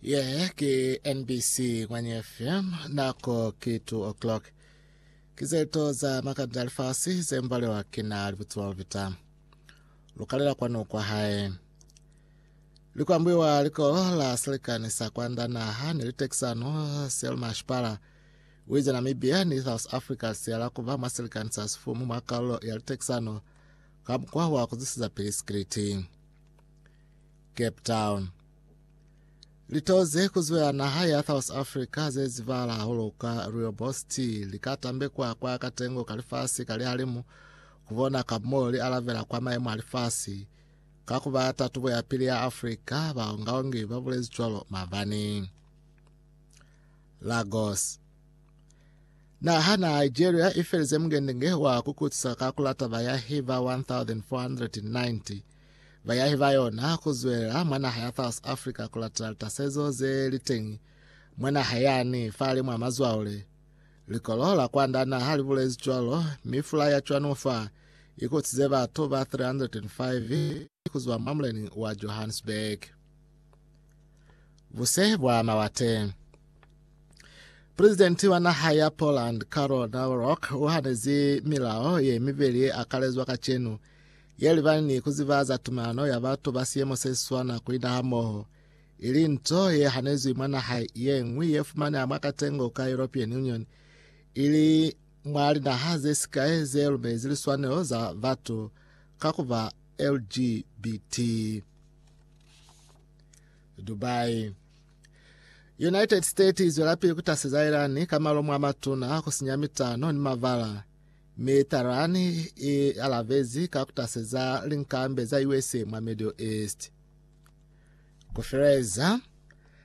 Yeah, ke NBC Ngwanye FM, nako ke 2 o'clock. Ke zeto za makabila a lifasi ze mbalewa ke na libutsi ba bapita. Lukalela kwanu kwa hae. Likwambiwa likolo la selekani sa kwanda naha ni litekisano Selma Shipala wize Namibia ni South Africa siyala kuba mwa selekani sa sifumu mwa kaulo ya litekisano ka mukwa wa kuzisiza pili sikiliti. Cape Town. Lito ze kuzwela naha ya South Africa ze zibahala hahulu ka rooibos tea li ka tambekwa kwa katengo ka lifasi ka lihalimu ku bona ka mo li alabela kwa maemo a lifasi ka ku ba tatubo ya pili ya Africa, baongaongi ba bulezi cwalo mabani. Lagos. Naha na Nigeria ifelize mungengenge wa kukutisa ka kulata bayahi ba 1490 Bayahi ba yona ku zwelela mwa naha ya South Africa ku latela litasezo ze li teñi mwa naha yani fahali mwa mazwaule. Likolo la kwanda naha li bulezi cwalo, mi fula ya cwanu fa i kutize batu ba 305 ku zwa mwa muleni wa Johannesburg. Buse bwa mawate. Presidenti wa naha ya Poland Karol Nawrok u hanezi milao ye mibeli ye akalezwa kacenu ye libani ni ku ziba za tumalano ya batu ba siyemo se siswana ku ina hamoho, ili nto ye hanezwi mwa naha ye ñwi ye fumaneha mwa katengo ka European Union, ili mwa linaha ze sikai ze lumezi liswanelo za batu ka ku ba LGBT. Dubai. United States izwelapili kutaseza Iran ka malomo a matuna, kusinya mitano ni mabala. Mi Tehran i alabezi ka kutaseza linkambe za usa mwa Middle East. Kufeleza,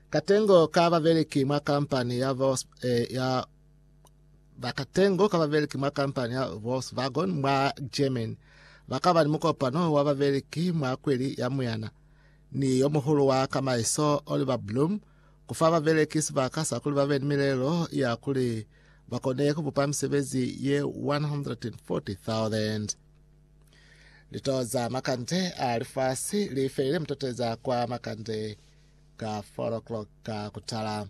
katengo ka babeleki mwa kampani ya, Vos, eh, ya bakatengo ka babeleki mwa kampani ya Volkswagen mwa Germany bakaba ni mukopano wa babeleki mwa kweli ya Muyana ni yo muhulu wa kamaiso Oliver Bloom kufa babeleki sibaka sa kuli babe ni milelo ya kuli ba kone ku bupa misebezi ye 140,000. Lito za makande a lifasi li felile mutoteza kwa makande ka 4 o'clock ka kutala.